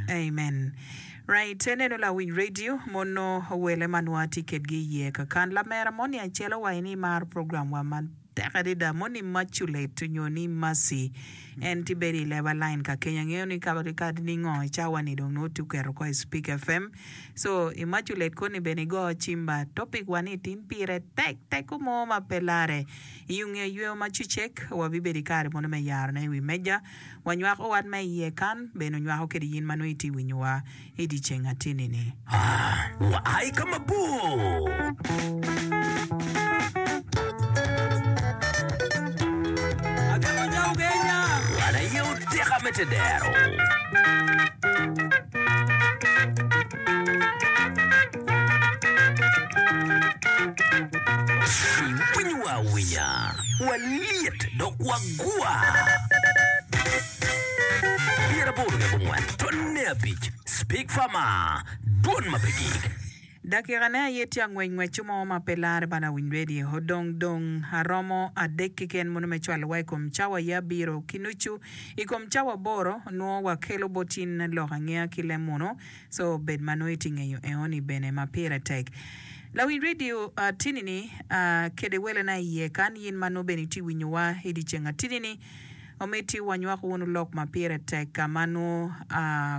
Amen right ineno lawic radio mono wele ma nwa atye kedgi iye kakan lamera moni acelo wa ini imaro program wa ma tek adada moni maculet onyo ni mercy en ti bedo ileba line ka keny angeyo ni ka kadi ningo cawa ni dong nongo ti oketo ko i speak FM so imaculet koni bene igo cimba topic wa ni tin pire tek tek ko mo ma pe lare I onge yweyo ma cecek, wabibedo i kare mono me yaro ne i wi meja, wanywak owat ma iye kan, bene onywako kede yin ma nongo itye winyowa i di ceng ateni ni. A wa ai ka mabor. Winyo wa awinya, walyet dok wagwa. Pyeraboro ki abongwen tonne abic, Speak Farmer, dwon ma pe gik. Dakika ne aye tye angwec ngweccu mo ma pe larre bala awiny radio. Odong dong aromo adek keken mono me cwalo wa ikom cawa aye abiro ki nucu ikom cawa aboro nwo wakelo bot in lok angeya ki lem mono Co bed ma nongo itye ngeyo eoni bene ma pire tek. Lawiny radio atini-ni kede welena iye, kan yin ma nongo bene itye winyowa idyeceng atini-ni, omiti wanywak wunu lok ma pire tek ka ma nongo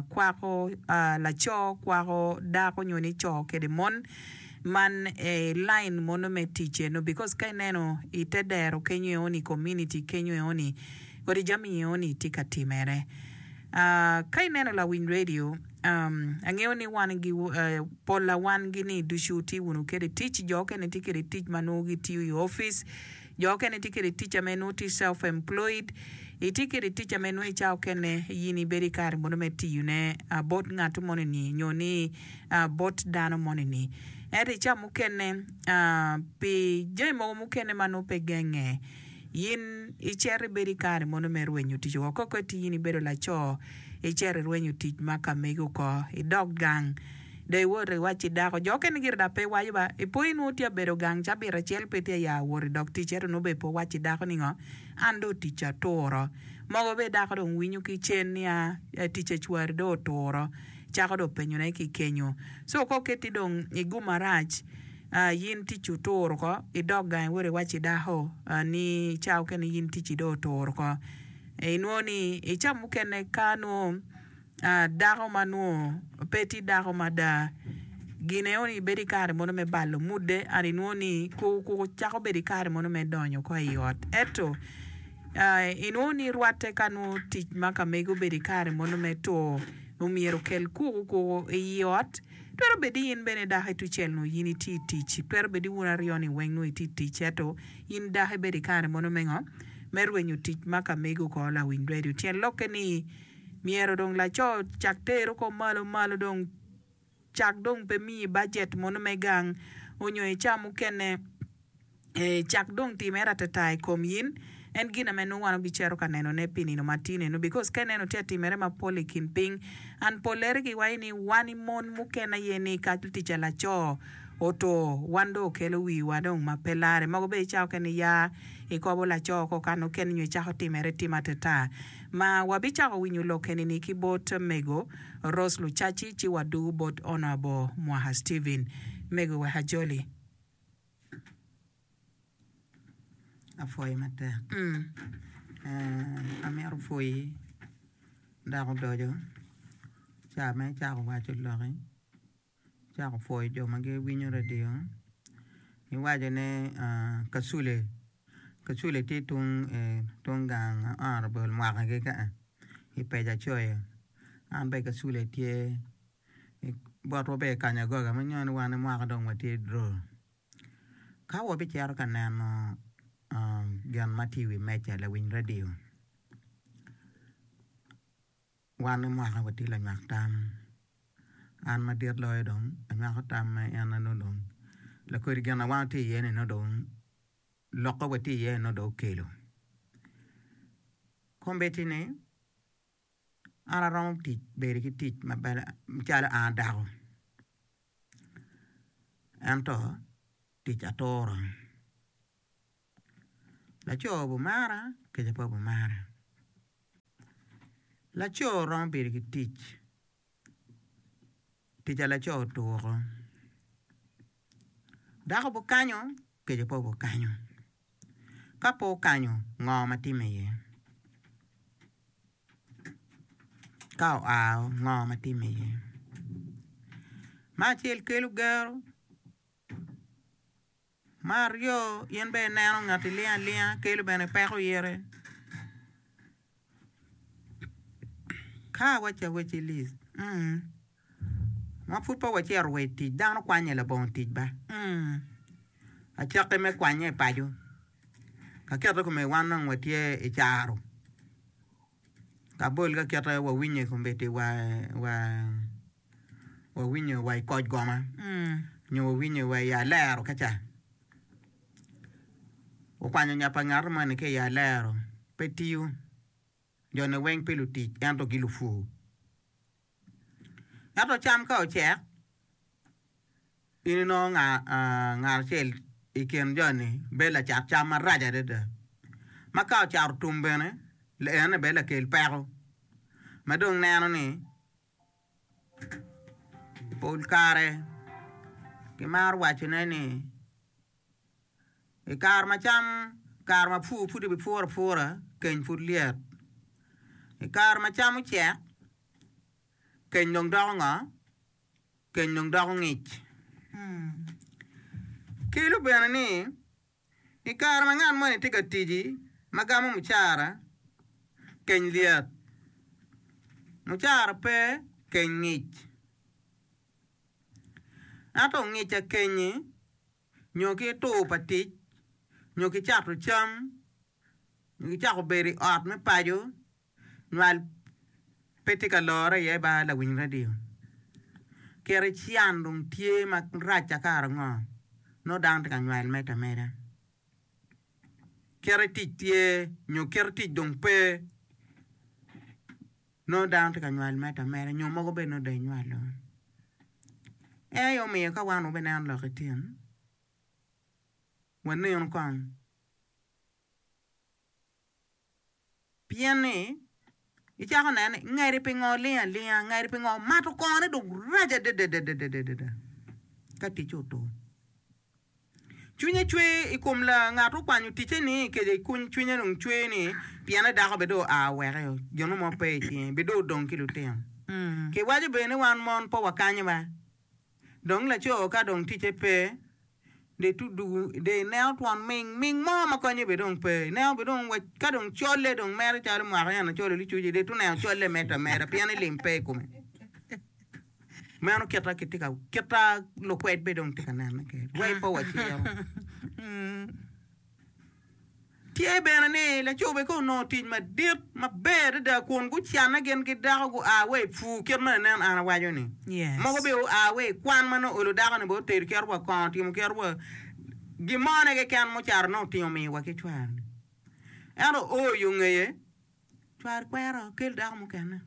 kwako laco kwako dako nyo ni co kede mon man i line mono me tic eno because ka ineno ite dero kenyo eoni community kenyo eoni kodi jami eoni tye ka timere. Ka ineno lawiny redio, angeyo ni wan gi polla wan gi ni ducu wutye wunu kede i tic, jo okene tye kede tic ma nongo gitiyo i opic, jo okene tye kede tic ame nongo tye self employed, itye kede tic ame nongo i cawa okene in ibedo i kare mono me tiyo ne bot ngat moni ni nyo ni bot dano moni ni. Ento i cawa mukene pi jami mogo mukene ma nongo pe genge, In icito ibedo i kare mono me rwenyo tic woko? Koko iti in ibedo laco, icito irwenyo tic ma ka mege oko, idok gang, dong iwoto iwacci i dako. Jo okene gire dok pe giwaco ba, Ipo in nongo tye ka bedo gang cabit acel pe itye ka ya wot idok tic, ento nongo bene pe wowacci i dako ni ngo? An dong ticca oturo. Mogo bene dako dong winyo ki cen niya, Ticca ocwari dong oturo. Cako dong penyone ki kenyo. Co koko iti dong igumo arac. A Yin ticci otur oko, idok gangi wot iwac ki dako ni ca mukene yin ticci dong otur oko. Inwongo ni i ca mukene ka nongo dako ma nongo pe tye dako mada gine onongo ibedo i kare mono me balo mudde and inwongo ni kuku cako bedo i kare mono me donyo oko i ot. Ento inwongo ni rwatte ka nongo tic ma ka mege obedo i kare mono me tur omyero okel kuku kuku i ot. Twero bed ni in bene i dako Etucel nongo in itye i tic. Twero bed ni wun aryo-ni weng nongo itye i tic, ento in dako ibedo i kare mono me ngo? Me rwenyo tic ma ka mego oko lawiny redio. Tyen lokke ni myero dong laco cak tero kop malo malo dong cak dong pe miyi bajet mono me gang onyo icaa mukene. Ee, cak dong timere atata i kom in. En gin ame nongo wan wabicito ka nenone pi nino ma tye nenu, because ka ineno tye atimere mapol i kin piny, and pollere giwaco ni wan i mon mukene aye ni ka tica laco oto, wan dong okelo wiwa dong ma pe larre. Mogo bene icawa kene ni ya ikobo laco oko ka nokene nyo icako timere tim atata. Ma wabicako winyo lok eni-ni ki bot Mego Rose Lucaci ci waduu bot Honourable Mwaha Steven. Mego wek ajoli. apwoyi matek amito pwoyi dako odoco ca ma icako waco loki icako pwoyo jo ma giwinyo radio iwaco ne kacule kacule tye tung gang honorable mwaka kika i peja coyo an bene kacule tye. botwa bene i kanya goga ma inongo ni wan mwaka dong watye dro. Ka wabicito ka neno gin ma tye i wi meja lawiny radiyo wan mwaka watye lanywak tam an madit loyo dong anywako tam ma en ma nongo dong lakodi gin ma wan watye iye ni nongo dong lokke watye iye ni nongo dong okelo kombeddi ni an aromo bedo ki tic calo an adako ento tic aturo laco obimara kica pe obimara laco romo bedo ki tic. Kica laco otuko. Dako pe okanyo, kica pe okanyo. Ka pe okanyo, ngo ma timme iye? Ka oao, ngo ma timme iye? Me acel kelo gero. Me aryo, in bene ineno ngat ilingo alinga kelo bene peko ite. Ka waca wacci lis, ma pud pe wacito wa i tic, dano kwanye labongo tic ba? Acakki me kwanye i paco, ka kite kome wan dong watye i caro, ka bol ka kite wawinyo i kombeddi wa. wawinyo wa i koc goma nyo wawinyo wa i alero kica. Okwanyo nya pa ngato moni ki i alero pe tiyo. Jone weng pe lutic ento gilupur. Ento cam ka ocek, in inongo ngat acel i kin joni bedo lacat cam marac adada ma ka ocato otum bene en aye bene lakel peko ma dong neno ni Pol kare kimaro wacone ni i kare ma cam kare ma pur pud kipuro apura keny pud lyet i kare ma cam ocek keny dong doko ngo keny dong doko ngic ki lubene ni I kare ma ngat moni tye ka tic ma gamo mucara, keny lyet. Mucara pe, keny ngic. Ento ongica kenyi nyo ki tur pa tic nyo ki cato cam nyo ki cako bedo i ot me paco Nywal pe tye ka lore iye ba lawiny radio. Keri cian dong tye ma racca kara ngo? Nongo dano tye ka nywal medo ameda. Keri tic tye nyo keri tic dong pe? Nongo dano tye ka nywal medo ameda nyo mogo bene nongo dong inywalo. Ene aye omiyo ka wan wubineno lok i tin wanenu kong. Pien ni, icako neno ni, ngeri pingo oling alinga, ngeri pingo omato kongone dong rac adadadadada ka ticce otur. Cwinye cwer i kom la ngat okwanyo ticce-ni, kece i kuny cwinye dong cwer ni, piene dako bene dong oa oweke, jonu mo pe i cinge, bidong odong ki lutino. Kiwaco bene ni wan mon pe wakanyo ba Dong laco ka dong ticce pe, de tudugu, de ineno twon ming ming mo ma konye be dong pe. Ineno be dong wa ka dong colle dong mere calo mwaka en acol i licuc-ci, de tuneno colle medo ameda pien i lim pe i kome. Meno kit ma kitye ka, kit ma lukwed be dong tye ka nene kwede. Way pa waciro. Tye bene ni lacobege onongo tic madit maber adada kun gucanne gin ki dako gua wa i pur kit ma lanen an awaco-ni. Mogo bene oa wa i kwan ma nongo oolo dakoni bene otedo cito wa kongo otimo cito wa gin mone keken mucato nongo otingo omiyo wa ki cware-ni. Ento oo yo ngeye cware kwero kel dako mukene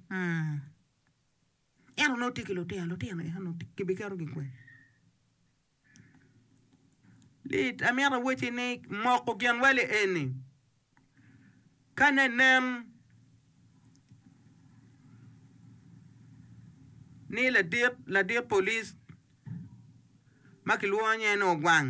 ento nongo tye ki lutino, lutino eno nongo kibiketo gikwen? Lit amito awacci ni moko ginwali eni ka ne nen ni ladit police ma kilwongo nye ni Ogwang.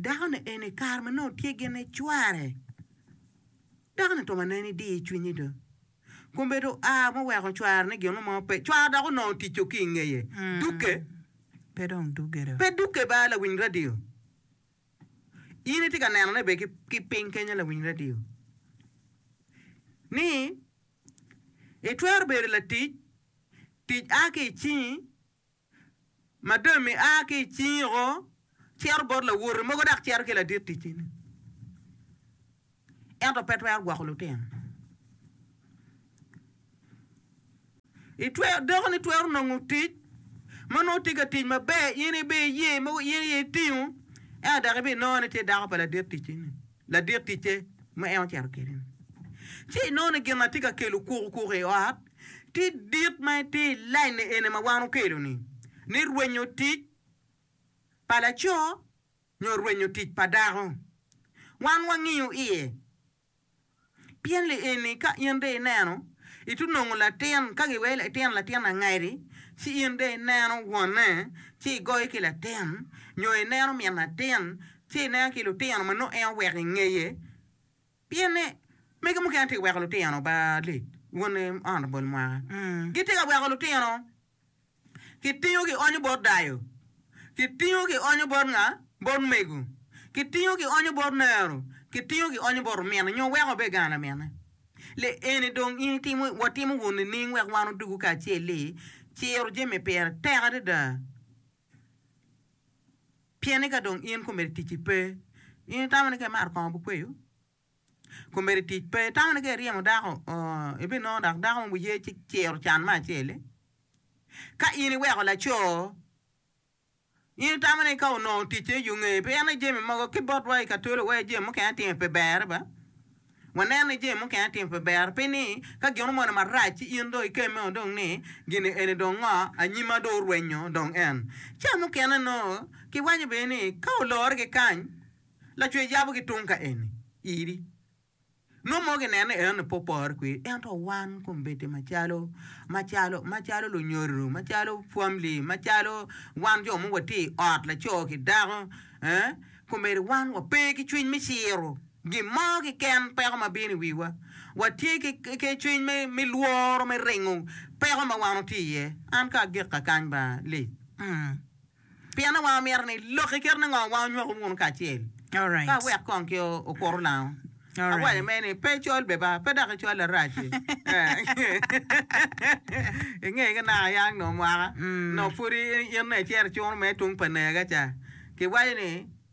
Dakoni eni kare ma nongo tye gin ni cware dakoni twero nen ni diyo cwinye do kombe do oa ma oweko cware ni gin mo pe cware dok onongo otico ki ingeye duke pe dong duke do pe duke ba lawiny radio in itye ka neno ne be ki piny kenya lawiny radio ni itwero bedo latic tic a ki icingi Madam ni a ki i cingi woko, cito bot lawote mogo dok cito ki ladit ticcine. Ento pe twero gwoko lutino. Itwero, dako ni twero nongo tic ma nongo tye ka tic maber, in ibi iye mogo, in iye itingo, ento dok ibinongo ni tye dako pa ladit ticcine. ladik ticce ma en ocito kwede-ni. Ci inongo ni gin ma tye ka kelo kukukuku i ot tye dit ma tye i lain eni ma wan okelo-ni, ni rwenyo tic pa laco nyo rwenyo tic pa dako. Wan wangiyo iye Pien li eni ka in de ineno, itunongo latin, ka giwero ni itino latin angadi, ci in de ineno wonne, ci igoye ki latin, nyo ineno min atin, ci ineno ki lutino ma nongo en oweko i ngeye, pien ni mege mukene tye ka weko lutino ba lec, wonne oonto bol mwaka, gitye ka weko lutino Kitingo kionyo bot dayo? Kitingo kionyo bot nga? Bot mego? Kitingo kionyo bot nero? Kitingo kionyo bot omino nyo weko obed gang laminne? Le eni dong in itimo, watimo wun nining wek wan odwogo kacel ni ciro jami pire tek adada? Pien ni ka dong in komedo ticci pe, in itamo ni ka imato kongo bukweyo? Kombeddi tic pe itamo ni ka iryemo dako ooh ibinongo dok dako mogo ye ci ciro can me acel-li. Ka in iweko laco in itamo ni ka onongo ticce i yo ngeye pi en aye jami mogo ki botwa i katolo weko jami mukene atimo pi berre ba wanen ni jami mukene atimo pi berre pi ni ka gin omone marac ci in dong ikemme o dong ni gini eni dong ngo anyima dong orwenyo dong en ca mukene nongo kiwaco bene ni ka olore ki kany Lacwe yabo ki tung ka eni iri. Nongo mogi neno eno ni pe opore kwiri, ento wan kombeddi macalo, macalo, macalo lunyodo, macalo famli, macalo wan jo mogo watye i ot laco ki dako, eh, kombeddi wan wape ki cwiny me ciro gin mo kiken peko ma bino i wiwa. Watye ki, ki cwiny me, me lworo me ringo peko ma wan watye iye. An ka agikka kany ba, Lee. Mm. Pien ni wang omito ni lok i kit ningo wang onywako wunu kacel, ka wek kong ki okuru lango. Awaco me ni, pe icol beba, pe dok icol arac i, i nge ki naka yang nongo mwaka, nongo pud in icero cunu me tung pa nega ca. Kiwaco ni.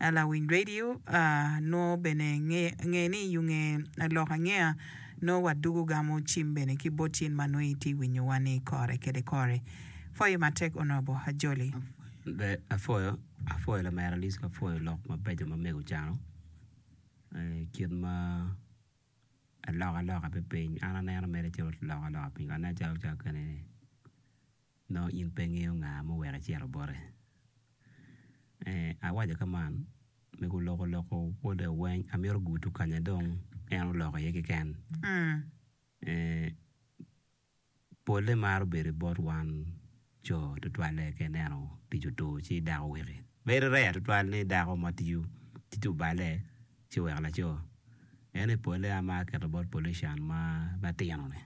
a lawiny radio a nongo bene nge ni yunge a lok angeya nongo wadugo gamo cim bene ki bot cin ma nongo itye winyo wa ni kore kede kore. Pwoyo matek Honorable Ajoli. Apwoyo apwoyo lamera Alisco apwoyo lok mabeco ma mego ocano kit ma alok aloka me piny an aneno mere calo lok aloka piny kong aneno calo kene ni nongo in pe ingeyo nga muweko icito bote. Ee, awaco ka man, me guloko loko wode weng, amito gutu kanya dong en oloko iye keken. Ee, polle maro bedo bot wan co tutwalle ka ineno tic otur ci dako wiki. Bedo rare tutwal ni dako ma tiyo tic oballe. ci wek laco en i polle a ma aketo bot pollution ma matino ni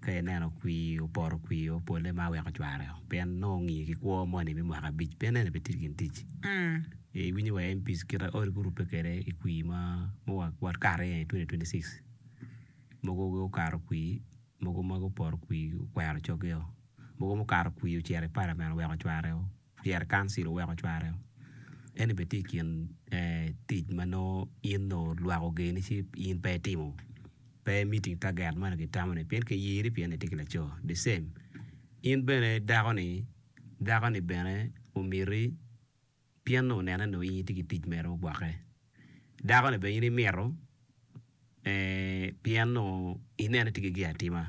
ka ineno kwir opoto kwir o polle ma weko cware o pien nongo ongiyo ki kwo moni me mwaka abic pien ene pe tye gin tic i winyo wa MPs kit aye gurube kwede i kwir ma wa wakato i ye i twenty twenty six mogo gukato kwir mogo ma gupoto kwir okwero cogeo mogo mukato kwir ocito i parliament oweko cware o. Pyere Council oweko cware eni bene tye i kin tic ma nongo in nongo lwak ogeni ci in pe itimo pe i meeting taget moni kitamo ni pien kiyiri pien itye ki laco the same in bene dako ni dako ni bene omiti pien nongo onene nongo in itye ki tic mere me gwokke. Dako-ni bene in imito pien onongo inene tye ki gin atima.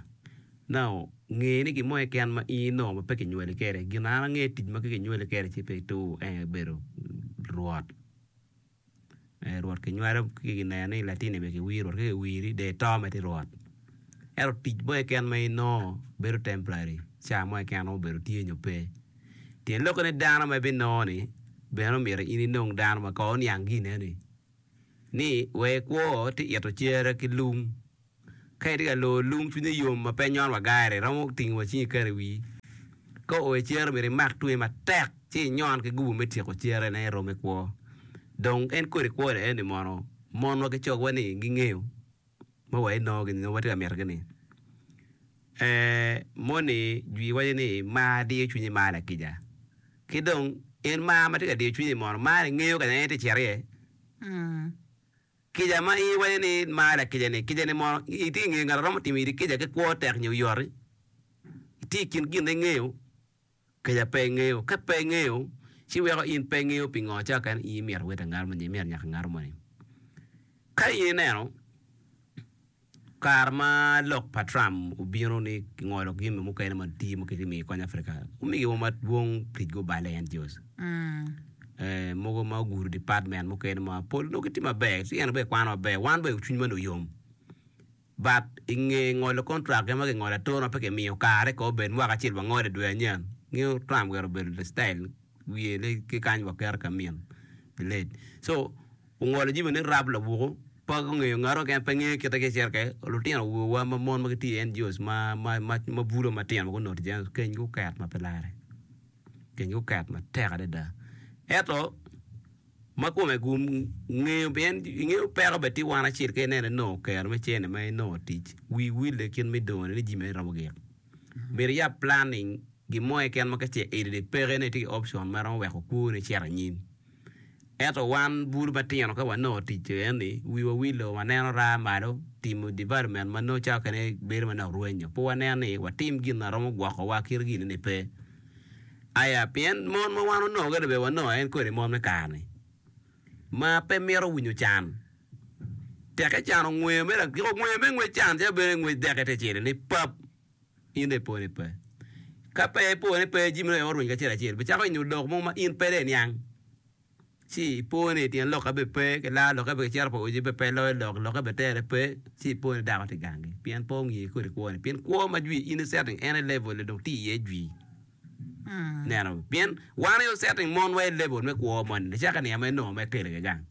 Now nge ni gin mo keken ma in onongo pe kinywali kwede. Gin ma an angeyo tic ma kinywali kwede ci pe ituko en aye bedo rwot. Rwot kinywalo ci kineno ni latinni myero kiwir rwot ka kiwiri dong ito mere tye rwot. Ento tic mo keken ma inongo bedo temporary, cawa mo keken ma onongo obedo tye nyo pe. Tyen lokke ni dano ma ibinongo-ni bene omyero in inong dano ma kor oniang gine-ni. Ni, wek ikwo ti ito cere ki lung. Ka itye ka lor lung cwinye yom ma pe nyon wa gairi romo tingo wa cingi iketo i wii. Ka oo i cere myero imak tunge matek ci inyon ki gubu me tyeko cere ne irome kwo. Dong en kodi kwo-ni eni mono monwa ki cogwa-ni gingeyo? ma wa inongo gini nongo watye ka mito gini eeh moni jwi waco ni mar diyo cwinyi mar lakica ki dong en mar matye ka diyo cwinyi mono mar ni ngeyo kanya ma en tye ka cito iye kica ma in iwaco ni in mar lakica ni kica ni mono itye ka ngeyo ngat ma romo timo iri kica ki kwo tek nyo yot-ti? Itye i kin gin ma ingeyo. Keca pe ingeyo. Ka pe ingeyo, ci weko in pe ingeyo pi ngo cawa kene in imyero iwot angar moni, imyero inyaka angar moni. Ka in ineno kare ma lok pa Trump obino ni kingolo jami mukene matir ma kitye miyo i kony Africa, omigi wa madwong tic gubale, NGOs. Eh, mogo ma ogudo department mukene ma pol onongo gitye maber, ci en bene ekwano maber. Wan bene cwinywa ni oyom. Bat i nge ngolo kontrak gin ma kingolo atura ma pe kimiyo kare kong obed mwaka acel wa ngolo i dwe anyen. Ngeyo Trump gire obedo le style wiye le ki kany wa keto ka min pi late. So ongolo jimi ni rap labuku pe ongeyo ngatu keken pe ngeyo kite ki cirke lutino wa wa ma mon ma gitye i NGOs ma ma ma ma bulo matino ma gunoti jami ma kenygi oket ma pe lare. Kenygi oket matek adada. Eto ma kome gu ngeyo pien ingeyo peko bed tye wan acel keken en aye nongo kero me cene ma inongo tic wi wille kit me dongone ni jimi aye romo gik myero iyab planning gin mo keken ma ka ce i ri peko en aye tye ki option ma romo weko kwoni cito anyim ento wan bur ma tino ka wa nongo tic co eni wi wa wilo wa neno raa malo timo development ma nongo cawa kene bedo manok rwenyo pe wa neno ni wa tim gin na romo gwoko wa kit gin ni pe Aya, pien mon ma wan onongo kede bewa nongo en kodi mon me kare-ni, ma pe mito winyo can. Tek ecano ngweyo me lagik, ngweyo me ngwec can calo bedo ni ngwec dek ite cilo ni pap, in dong ipo ni pe. Ka pe ipo ni pe, jami-ni dong aye orweny kacel acel, bicako inyo lok mo ma in pede iniang. ci ipo ni i tyen lokke bene pe kilaro lokke bene kicito pa oji bene pe loyo lok lokke bene tere pe ci ipo ni dako tye gangi pien pe ongiyo ki kodi kwone pien kwo ma jwi in icito en i level ni dong tye iye jwi ineno pien wan aye wacito mon wa i level me kwo moni icako i niang ma inongo ma ikelo iye gang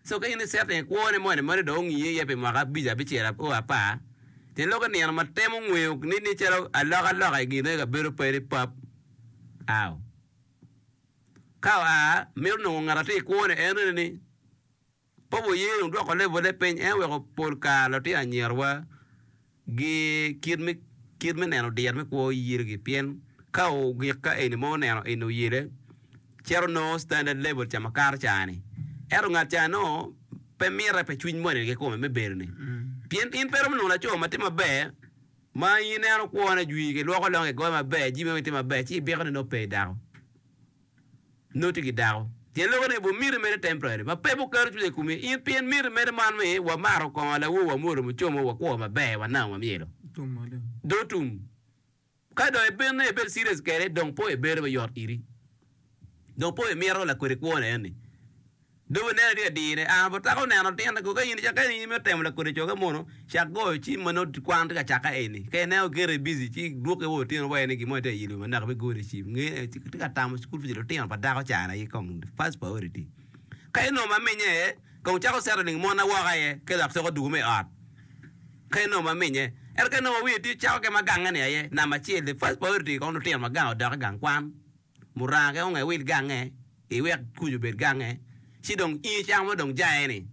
so ka in icito i kwone moni meno dong ongiyo iye pi mwaka abic abicel o apar tyen lok inino ma temo ngweyo ni calo alokaloka i gin eno i kabedo pe ni pap aw Ka oa, mito nongo ngat atye i kwone. En reni ni, Papa oye dong dwoko levole piny. En oweko pol kare lutino anyerowa gi kit me neno dir me kwo oyirgi pien ka ogik ka eni ma oneno eni oyele, cito nongo standard level ca ma kato ca-ni. Ento ngat ca nongo pe mite pi cwiny moni kikome me bedo-ni pien in pe iromo nongo laco ma tye maber. Ma in ineno kwone, jwi, kilwoko longe, kigoyo maber, jami weng tye maber, ci ibiko ni nongo pe idako. Nongo itye ki dako. Pien loko ni bu miti mere temporary, ma pe bu keto cwiny i komi in pien miti mere man mi wa maro kongo lawo wa mwolo mucomo wa kwo maber wa nang wa myelo. Dong tum. Ka dong ibino ibed serious kede dong po ibedo me yot iri. dong po imito lakwedi kwone eni. Dong ineno ni adine aa bot taka oneno tyen ni koka in ka in imito temo lakwedi coge mono cak goyo cim ma nongo kwan tye ka cakke eni ka ineno gire busy ci dwoke wa otyeno wa eni gin mo aye tye ka yelo naka me gone cim nge tye ka tamo school fees lutino pa dako cana aye kong first priority. Ka inongo ma minye aye kong cako settling mone woko aye ki lok cok odwogo me ot ka inongo ma minye ento ka inongo ma wiye tye cako kema gange ni aye number acel the first priority kong lutino ma gang odok i gang kwan. muranga onge wil gange, iwek kuc obed gange, ci dong in icamo ma dong jaye-ni.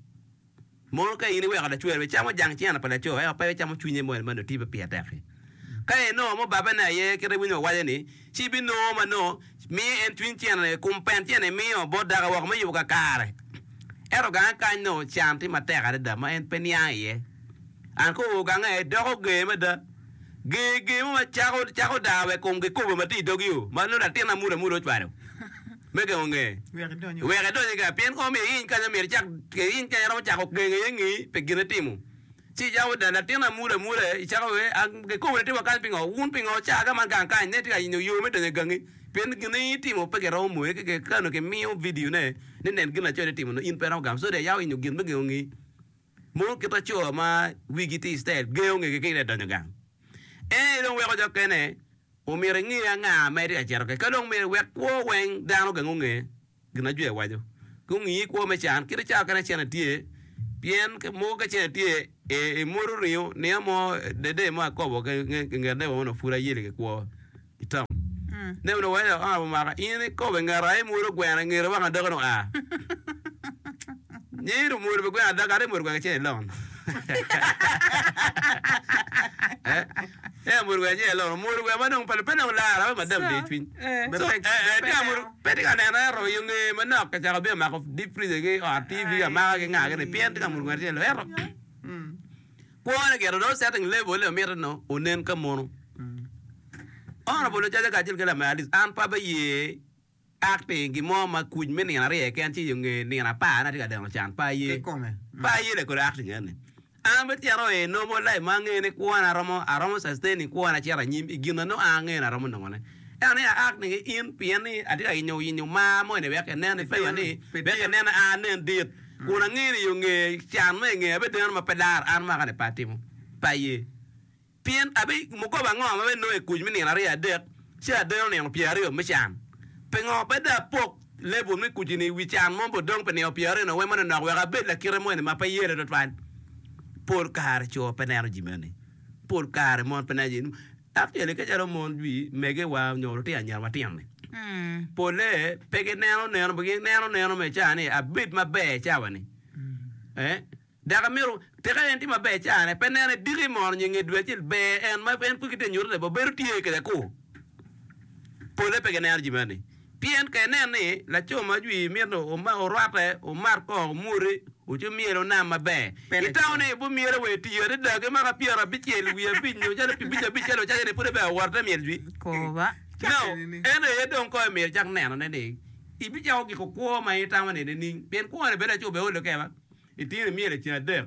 Mono ka in iweko lacweri bene camo jang cente pa laco ento pe icamo cwinye moni ma nongo tye pe pire tek-ki? Ka inongo mubabbe ne aye kit ma winyi owaco-ni, ci ibinongo ma nongo miyo en cwiny cente i kom pent cente imiyo bot dako woko me yubo kakare. Ento gange kany nongo can tye matek adada ma en pe niang iye. An kowu gange doko ger mada. Ger ger mo ma cako cako daa wek kom kikopo ma tye i dogi o, ma nongo latin amuda muda ocwalo me gengo ngeye wek edony iga. Pien kong myero iiny kany ma myero icak, iiny kany iromo cako gengo iye ngi pi gin itimo, ci icako daa latin amuda muda, icako iye, A, kikopo ni atima kany pingo? Wun pingo wucaa ka man gang kany? Ne itye ka yenyo yo me donyo i gangi, pien gin ma in itimo pe kiromo moye, ki kare onongo kimiyo vidio ne ni nen gin laco ni timo nongo in pe iromo gamo, so daa iyawa yenyo gin me gengo ngi. Mono kit ma co ma wigi tye i citayel gengo ngegi ki i nge donyo gang? En aye dong weko jo kene omyero enge anga ma itye ka cito kwede. Ka dong myero iwek kwo weng dano gang onge gin ma Ajwe waco, gungi kwo me can kit cawa kene cene tye, pien mogo ka cene tye imwodo ringo, niya mo dede mo akobo nge dewa onongo pud ayeli ki kwo. Nen wene dok aa omaka in ikobe ngat aye mwod ogweno ingete weko adoge dong aa. Nyi dong mwod pe gweno adoge ate mwod gweno acel ilon. Ea mwod gweno acel ilon omwodo gweno ma dong pe pe dong lara weko madam de cwiny. So ee tye amwodo pe tye ka neno ento yo nge manok kacako bino mako deep freezer ki ot TV amaka ki nga gini pien tye ka mwod gweno acel ilon ento Kwone gire dong setting level ni omito ni onen ka mono. Honorable Ocaca kacel ki Lamer Alice an pe abiye acting gin mo ma kuc me nino aryo keken ci yo nge nino apar ni atye ka deno can pe aye. Pe aye le kodi acting eni. An abicito i normal life ma angeyo ni kwona romo aromo sustaining kwona acito anyim i gin ma nongo an angeyo ni aromo nongone. Ento ni aak ni in pien ni atye ka yenyo yenyo mar mo ini wek enen ni piwa ni wek enen a anen dit kun angeyo ni yo nge can mo inge abe deno ma pe laro an mwaka ni pe atimo pa ye pien abe mukobo ango ma be nongo ikuc me nino aryo adek ci adeno nino pyer aryo me can pingo pe dong apok level me kuc ini iwi can mo bo dong pi nino pyer aryo ni wemo ni nok wek abed lakite mo ini ma pe yelo twatwal pol kare co pe neno jami magi pol kare mon pe neno jami Dok tyene ki calo mon dwi megewa nyo lutino anyira matino-ni, polle pe gineno neno, gineno neno me ca ni abed maber cawa-ni. Dok amyero tika en tye maber cane, pe nene diki mono nyo nge dwe acel ber en ma en pud kitye ka nyuto ni bene obedo tye kede-ku. Polle pe gineno jami meno-ni. Pien ka inen ni laco ma jwi mito orwatte, omat kong omwoti, oco myel onam maber. Itamo ni bu myel awe tiyo adada ki mwaka pyera abicel wiye abic nyo calo pi bic abic calo ocayo ni pud ebea wot ite myel jwi? Koba. No. Ento aye dong kong imito icak neno ne ni ibicako giko kwo ma itamo ni nining? Pien kwo ni bene laco obea olo keba itino imyel eceng adek.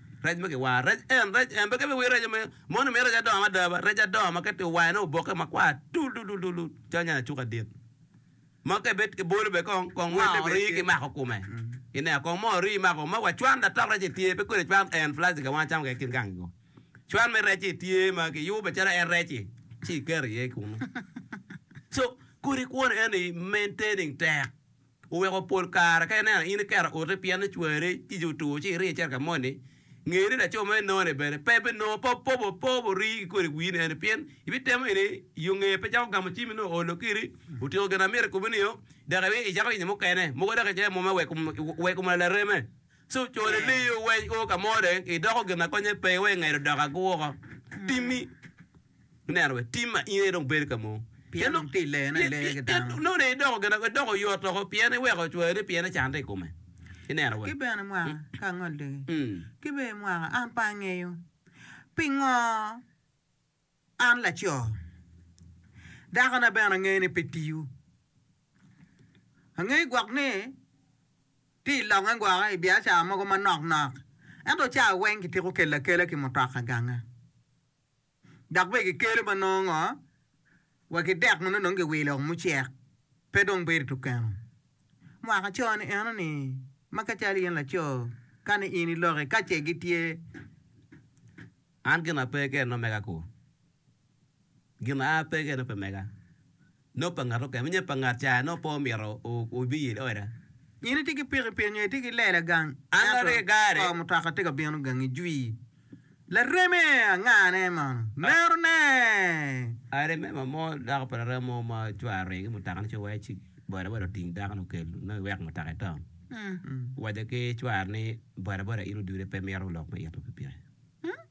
Rec ma kiwaro. Rec en, rec en. Pe kebe wi reco me, moni miyo rec adongo mada ba. Rec adongo ma keti owaye ne oboke makwar tul tul tul tul calo nyanya cuka dit. Ma ka ibed kibolo be kong, kong welle be. Moo rii kimako kome. Ineno, kong moo rii imako. Ma wa cwan da tok rec-ci tye, pe kodi cwan en plastic a wang camo kek kin gangi go. Cwan me rec-ci tye ma kiyubo macalo en rec-ci, ci iketo iye kunu. So, kodi kwone eni maintaining tek. Oweko pol kare ka ineno in iketo oti pien cwari tic otur ci iriyo icito ka moni, nge ni laco ma inononi bene pe binongo pe opobo pe ori ki kodi wii ni eni pien ibitemo ini iyo nge pe cako gamo cimi nongo oolo kiri otiko gin amito ikubi nio dok ibi icako yenyo mukene mogo dok ice muma wek omona lareme so cone ni liyo weny o ka mo dong idoko gin ma konye pe iwe ngedo dok agu woko timi me neno bene tim ma in aye dong bedo ka mono. Pien dong pi lene ileyo ki dano. Nongo dong idoko gin, idoko oyot woko pien iweko ocwale pien icante i kome. Ineno bene. Ki bene mwaka, ka angolligi. Ki bene mwaka, an pe angeyo pingo an laco. Dakona bene angeyo ni pe tiyo. Angeyo gwok ni tye i lokke gwoko i biacara mogo manok nok, ento cawa weng kitiko kela akela ki mutoka ganga. dok bene gikelo ma nongo ngo wa ki dek ma nongo dong giwilo mucek pe dong bedo tu keno mwaka co ni eno ni ma ka calo in laco ka ni in iloki ka ce gitye an gina pe keno mega ku gina a pe keno pe mega. Lok pa ngat mukene me nyo pa ngat caya nongo pe omito obi i oda. In itye ki pikipiki nyo itye ki lela gang ento kor mutoka tye ka bino gangi jwi. Lareme anga ne mono? Mero ne! Aremema mo dako pa laremo mo ma cware oringo ki mutoka ni ci wacce ci boda boda oting dako ni okel nongo iweko mutoka ito. Owacce ki cware ni boda boda in odude pe mito lok me ito pikipiki.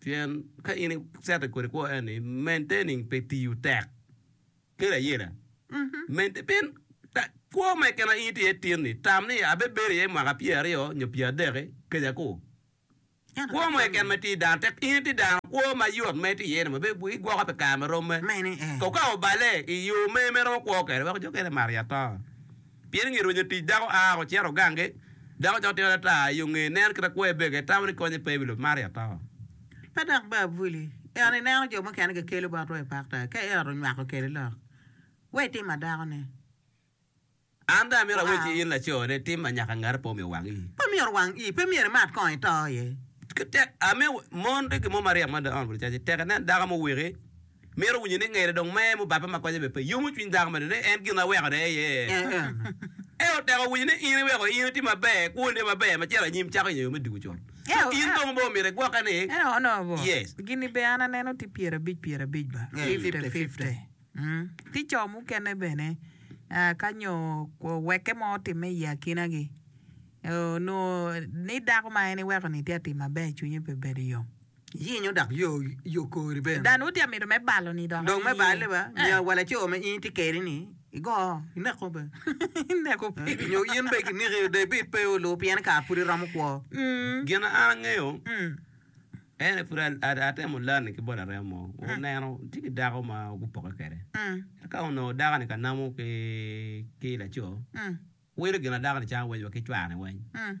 Pien ka in icette kodi kwo en ni maintaining pe tiyo tek kede ayela. Maintain pien ta, kwo me kena in itye tin ni tam ni abebedo iye mwaka pyer aryo nyo pyer adeki keja ku. Ento Kwo ka mo kwo-ni, keken ma tye dano tek in itye dano kwo ma yot ma itye iye ni ma be bu- igwoko pi kare ma romme. ma en ni ee. Kong ka obale i yo me me romo kwo kede wek jo kene mar i atonga. Pien i nge rwenyo tic dako aa woko cito gange, dako ca otito ata i yo ngeye, neno kit akwer bege, itamo ni konye pe i wi lobo man ri ato. Pe dok ba abuli, ento ineno jo mukene gikelo botwa i pak taa, ka eot onywako kede lok, we itim ma dako ni. An dong amito awec ki in laco ni, tim ma nyaka ngati pe omyero owang iyi. Pe myero owang iyi, pe myero imat kong ito iye. Tek, amiyo mon tye ki mon maryek mada on bulu caci, tek inen dako muwiki Mito winyo ni ngede dong mer mubabbe ma konye bene pe yomo cwiny dako meno ni en gin aweko ne iye. Ento tek winyo ni in iweko in iti maber, kwoni tye maber ma cito anyim cako yenyo yo me diko con. Ci in dong bor omyero igwokke ni, Yes. Gini be an aneno tye pyer abic pyer abic ba, fifty fifty. Tye co mukene bene ka nyo owekke mo otimme i akina gi, onongo ni dako ma en iweko ni tye atim maber cwinye pe bedo yom. Yenyo dok yo kori bene. Dan woti amito me balo ni dok Dong me aye. balle ba, Eh. nyo wa laco ma in itye kede ni, igo, ineko be. Ineko pe. Eh, nyo in be kiniki, David pe olu pien kare pud iromo kwo. Mm. Gin ma an angeyo, Mm. en aye pud a- a- atemo lani ki bot arem mo. Oneno tye ki dako ma gupoke kede. Mm. Ento ka onongo dako-ni ka namo ki ki laco, Mm. wilo gin ma dako-ni camo weny wa ki cware weny. Mm.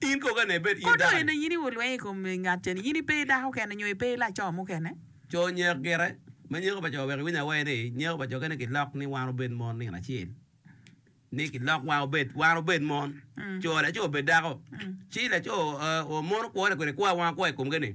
Kodo en aye ni wun lweny i kom ngat cen, in ipe dako kene nyo ipe laco mukene? Co nyeko gire, ma nyeko pa co wek iwiny awer ni nyeko pa co kene gilok ni wan obed mon nino acel, ni gilok wan obed wan obed mon co laco obed dako, ci laco mono kwone kwede kwa wan akwa i komgi ni.